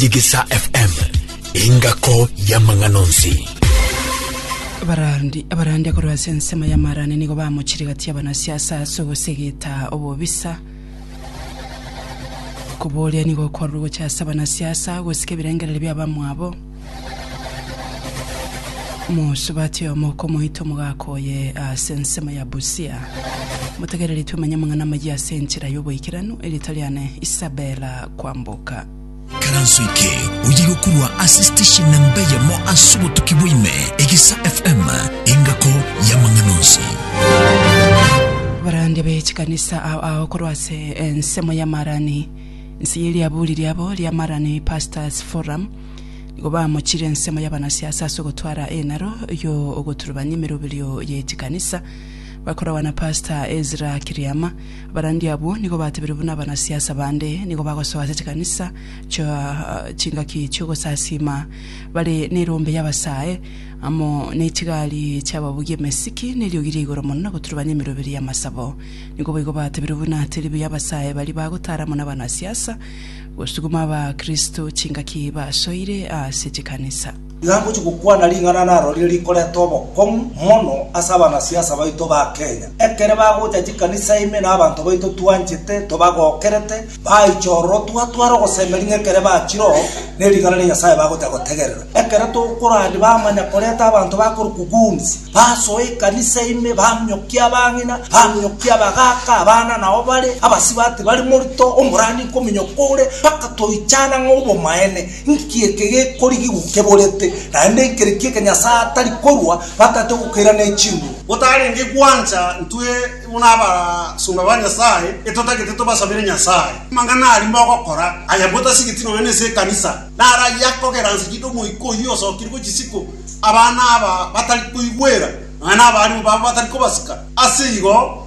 Digisa FM, engako y'amang'ana onsi. Abarandi abarande korwa ase ensemo ya Marani nigo bamochirigatia abanasiasa ase ogosegeta obobisa. Koboria nigo okwarorwa gocha ase abanasiasa gosika ebirengereri bia abamwabo. Mosubati oyomo okomoita omogaka oye ase ensemo ya Busia. Motegereri twamanye amang'ana amayia ase enchera y'oboikeranu, erita riane Isabella Kwamboka. Ikaranso eke oye gokorwa ase station namba eyemo ase obotuki bwaime, Egesa FM, engako y'amang'ana onsi. Abarandia be chikanisa ao ao korwa ase ensemo ya Marani, inse ye riaburi riabo ria Marani Pastors Forum, nigo bamochire ensemo y'abanasiasa ase ogotwara enaro y'ogoturubania emeroberio ye chikanisa, bakoragwa na Pastor Ezra Kiriama, Abarandia abwo nigo batebiru buna abanasiasa bande, nigo bagosoa ase chikanisa chia chingaki chi'ogosasiima, bare nerombe y'abasae, amo nechigari chi'ababugia emesiki, neriogi ria igoro mono na goturubania emeroberi y'amasabo. Nigo boigo batebiru buna tiribu y'abasae baria bagotara amo nabanasiasa gosuguma abakristo chingaki basoire ase chikanisa. Iga ngochia gokwana ring'ana narorire rikoreta obokong'u mono ase abanasiasa baito ba Kenya, ekere bagocha chikanisa ime na abanto baito twanchete tobagokerete, baicha ororo twatwara ogosemeria ng'a ekere bachireo nering'ana ria Nyasaye bagocha gotegerera. Ekero tokorande bamanya koreta abanto bakorokwa goons, basoa ekanisa ime, baminyokia abang'ina, baminyokia abagaaka, abana nao bare, abasibati bare morito, omorani nkominyoka ore, mpaka toichana ng'a obomaene. Nki eke gekorigigwa keborete, naende nkereki eke Nyasae atari korua batate ogokeira ne chinguru? Gotarenge gwancha, intwe bono abasomba ba Nyasae etotagete tobasabere Nyasae amang'ana aria mogokora aya bwotasigetie nonya nense y'ekanisa. Naro ayio akogera nse chi'nda omoika oyio osokerigwe chisiko, abana aba batari koigwera, nonya nabarimo babo batari kobasika. Ase igo,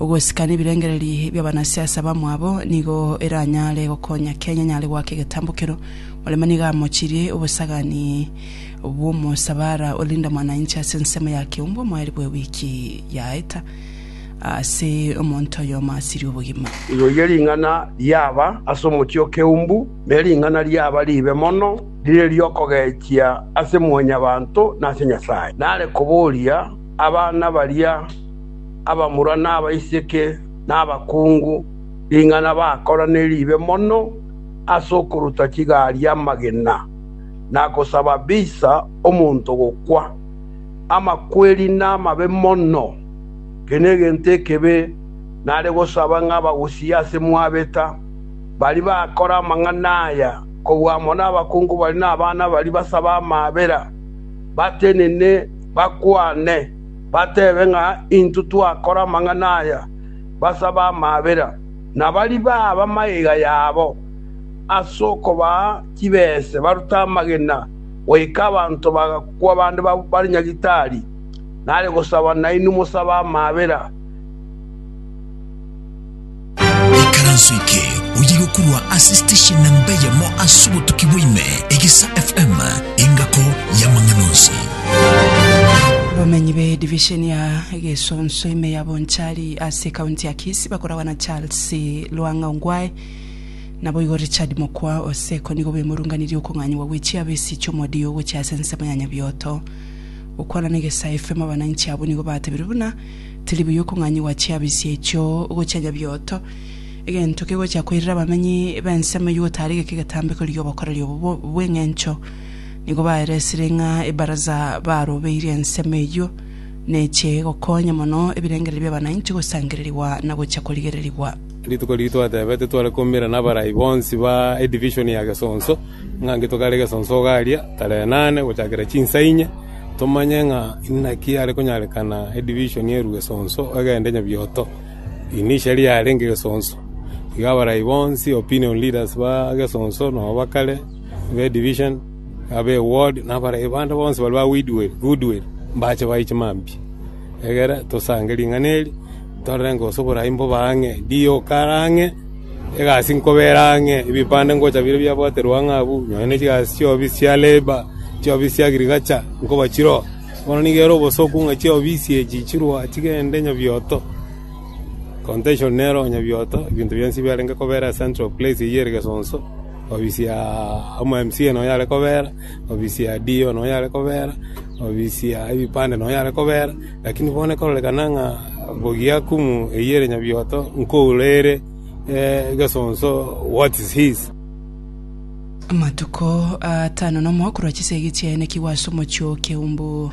Ogosikana ebirengererio ebi bi'abanasiasa abamwabo nigo eranyare gokonya Kenya enyare goaka egetambokero. Murema nigo amochirie obosagani bw'omosabara o Linda Mwananchi ase ensemo ya Keumbu omoeri bwe wiki yaeta ase omonto oyomo asirie obogima. Riroyio ring'ana riaba ase omochie o Keumbu, ne ring'ana riaba riibe mono, rire ri'okogechia ase mwanyabanto na ase Nyasae. Nare koboria abana baria. abamura na abaiseke na abakungu, ring'ana bakorane riibe mono ase okoruta chigari amagena, na gosaba bisa omonto gokwa. Amakweri namabe mono, kera egento ekebe nare gosaba ng'a bagosie ase mwabeta. Baria bakora amang'ana aya kobua amo nabakungu baria na abana baria basaba amaabera, batenene, bakwane, batebe ng'a intwe twakora amang'ana aya, basabe amaabera, na baribe ab'amaiga yabo ase okobaa chibese barute amagena, goika abanto bagakwa bande bare Nyagetari, nare gosaba nainwe mosabe amaabera. Ekaranso eke oye gokurwa ase station namba eyemo ase obotuki bwaime, Egesa FM, engako y'amang'ana onsi. Abamenyi be division ya Gesonso ime ya Bonchari ase county ya Kisii bakoragwa na Charles Lwang'a Ongwae naboigo Richard Mokwa Oseko nigo bemorunganirie okong'anyigwa gwe chiabe ase chi'omodio gochia ase ensemo ya Nyabioto. Gokwana na Egesa FM abananchi abwo nigo batebiru buna Tiri buya okong'anyigwa chiabisi echio gochia nyabioto, egento kegochia koirera abamenyi b'ensemo eyio gotaara geka egetambeko ri'obokoreri obo bw'engencho. Nigo baeresire ng'a ebaraza barobeirie ensemo eyio neche gokonya mono ebirengererio bi'abanainchi gosangererigwa na gochia korigererigwa. Rituko riria twatebete tware koumera n'abarai bonsi ba edivision ya Gesonso, ng'a nki tokare Gesonso ogaria tarehe nane gochakera chinsa inye, tomanye ng'a inaki are konyarekana edivision erwe Gesonso egende nyabioto. Eri niricha riarenge Gesonso. Igo abarai bonsi, opinion leaders ba Gesonso na ba kare, ba edivision, abe ward, na abarai bande bonsi baria ba Goodwill, mbache bae chimambia. Egera tosange ring'ana eri, torore ng'a onsi oborai mbobe ang'e, rioka are ang'e, egasi nkobe ere ang'e, ebipande ngocha bire biabwaterwe ang'e abwo, nonya ne chigasi chiabi chia labour, chiabi chia agriculture, nkoba chire oo. Bono nigo ere obosoku ng'a chiofisi echi chirwa chigende nyabioto, contention nero nyabioto, ebinto bionsi biarenge kobera central place eyio ere Gesonso, ofisi ya omwa MCA nonya are kobera. obisia ID oyo nonya are kobera, obisia ebipande nonya are kobera, lakini bono ekorerekana ng'a bogia kumu eyio ere nyabioto nkoura ere egesonso what is his. Amatuko atano nomo korwa chisegi chiaenekigwe ase omochie o Keumbu,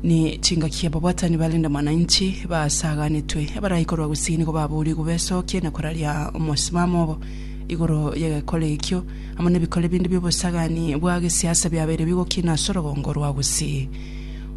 ni chingaki y'ababwatani ba Linda Mwananchi baasaganetwe, abarai korwa Gusii nigo baboorigwe besokie na koraria omosimamo obo igoro y'egekora ekio. amo nebikore binde bi'obosagani bwa gesiasa biabeire bigokina ase orogongo rwa Gusii.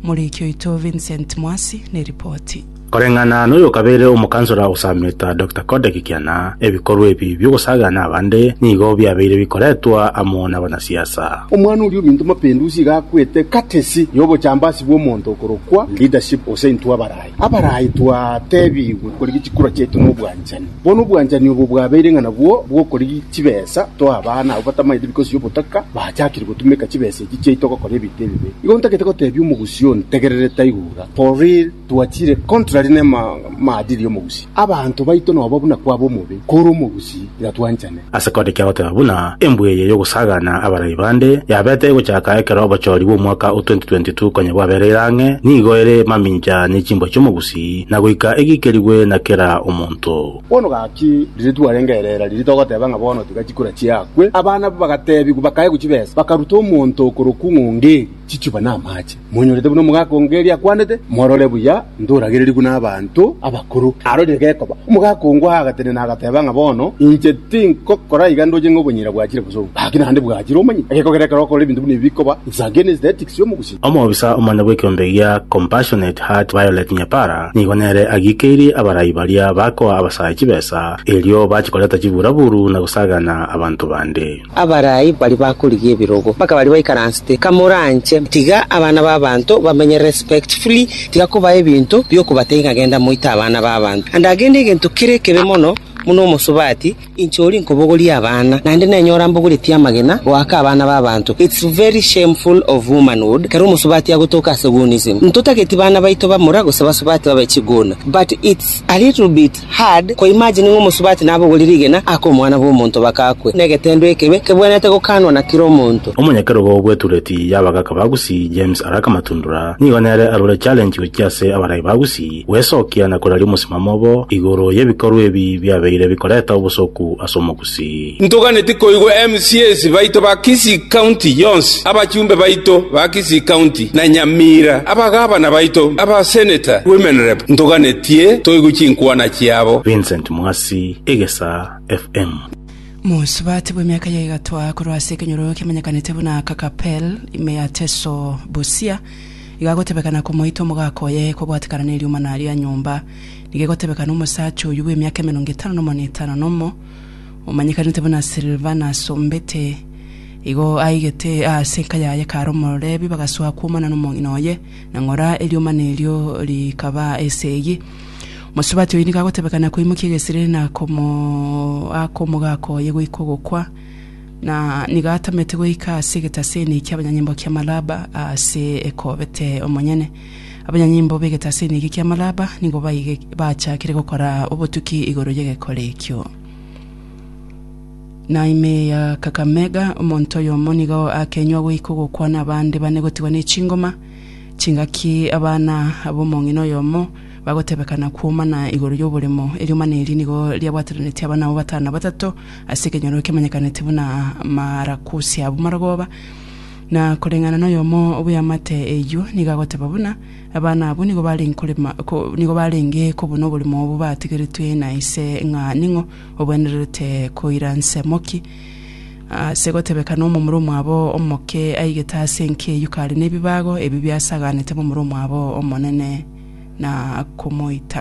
Omoriki oito Vincent Mwasi ne ripoti. Koreng'ana noyokabeire omokansora osameta Doctor Kode Kikiana, ebikorwa ebi bi'ogosaga nabande nigo biabeire bikoretwa amo nabanasiasa. Omwana oria ominto mapindusi iga akwete katesi y'obochambasi bw'omonto okorokwa leadership gose intwe abarayi abarayi twatebigwe korigi chikura chiaito nobwanchani. Bono obwanchani obo bwabeire ng'a nabwo bw'okorigia chibesa toa abana abwo batamaete bikosia obotaka bachakire gotumeka chibesa echi chiaito gokora ebinto ebibe. Igo ntagete gotebia omogusii ontegerere taiga oura, for real twachire contrary ne maadili y'omogusii. Abanto baito nobo buna kwaba omobe kore omogusii tiga twanchane. Ase kore kiagoteba buna embwe eye y'ogosaagana abarai bande yabete egochaka ekero obochoori bw'omwaka o 2022 konya bwabereire ang'e, nigo ere mamincha ne chimbwa chi'omogusii, na goika egiikerigwe na kera omonto. Bono gaki, riria twarenge erera riria togoteba ng'a bono tiga chikura chiakwe, abana abwo bagateebigwa, bakaegwa chibesa, bakaruta omonto okorokwa ng'ongo eria. chichuba namaache, monyorete buna omogaka o Ngeri akwanete, Morore buya, ntoragererigwe nabaanto abakoro. Arorire gekoba, omogaka o Ngwa agatenena, agateba ng'a bono inche tinkokora iga ndoche ng'a obonyira bwachire gose obo, gaki naende bwachire. Omanyete, egekogera ekero okorora ebinto buna ebi bikoba, it's against the ethics y'omogusii. Omobisa omonene bw'ekeombe gia Compassionate Heart Violet Nyapara nigo nere agiikeirie abarai baria bakoa abasae chibesa erio bachikoreta chiburaburu na gosagana abanto bande. Abarai baria bakorigia ebirogo, mpaka baria baikaransete, Kamoranche, tiga abana b'abanto bamenye respectfully, tiga kobaa ebinto biokobatebia ng'a genda moite abana b'abanto. And again egento kere ekebe mono buna omosubati, inche oria nkobogoria abana, naende nenyora mbogoretie amagena goaka abana b'abanto. It's very shameful of womanhood ekero omosubati agotoka ase woonism. Ntotageti bana baito bamura gose basubati babe chiguna, but it's a little bit Hard koimagine ng'a omosubati nabogorire rigena ake Omwana bw'omonto bagakwe, negetendo ekebe kebwenerete gokaanwa na kera omonto. Omonyakerogo bw'etureti y'abagaka ba Gusii, James Araka Matundura, nigo nere arure challenge gochia ase abarai ba Gusii, gwesokia na koraria omosimamo obo igoro y'ebikorwa ebi biabeire bikoreta obosoku ase Omogusii. Ntoganeti koigwa MCAs baito ba Kisii County yonsi, abachumbe baito ba Kisii County na Nyamira, abagabana baito, aba Senator, Women Rep, ntoganetie toigwe chinkwana chiabo. Vincent Mwasi, Egesaa FM. Mosubati bw'emiaka ya egatwa korwa ase ekenyoro kemanyekanete buna Kakapel, ime ya Teso, Busia, igagotebekana komoita omogaka oye kobwatekana neriomana ria nyomba. Nigo egotebekana omosacha oyio bw'emiaka emerongo etano na omonwe etano nomo, omanyekanete buna Silvana asombete, igo aigete aase enka yaye kare omorebi, bagasoa kwomana nomong'ina oye, na ng'ora eriomana erio rikaba esegi. Mosubati oyi nigo agotebekana koimokia egesiriri na komoaka omogaka oye goika ogokwa, na nigo atamete goika ase egetaseni kiabanyanyimbo kia Malaba aase ekobete omonyene. Abanyanyimbo b'egetasini eke kia Malaba nigo baige bachakire gokora obotuki igoro y'egekore ekio. Na ime ya Kakamega, omonto oyomo nigo akenywa goika ogokwana abande bane gotigwa n'echingoma, chingaki abana ab'omong'ina oyomo bagotebekana kwomana igoro y'oboremo, eriomana eri nigo riabwatananetie abana abwo batano batato ase ekenyoro kemanyekaneti buna Marakusi ab'Marogooba, Na koreng'ana noyomo bw'eamate eyio nigo agoteba buna, Abana abwo nigo barenge korema ko- nigo barenge kobuna oborimo obo batigeretwe na ise ng'a ning'o obwenererete koira nsemo ki. Ase gotebeka nomomura omwabo omoke aigete ase enki eyio kare nebibago ebi biasaganete momura omwabo omonene na komoita.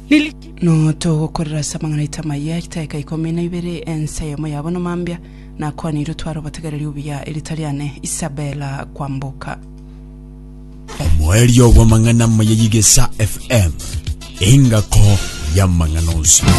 Notogokorera ase amang'ana aito amaya, Ritaika ikomi na ibere, ense eyemo yabo nomambia, Nakwanire otware obotegereri obuya, erita riane Isabela kwamboka. Omoerio bw'amang'ana amaya y'Egesaa FM, engako y'amang'ana onsi.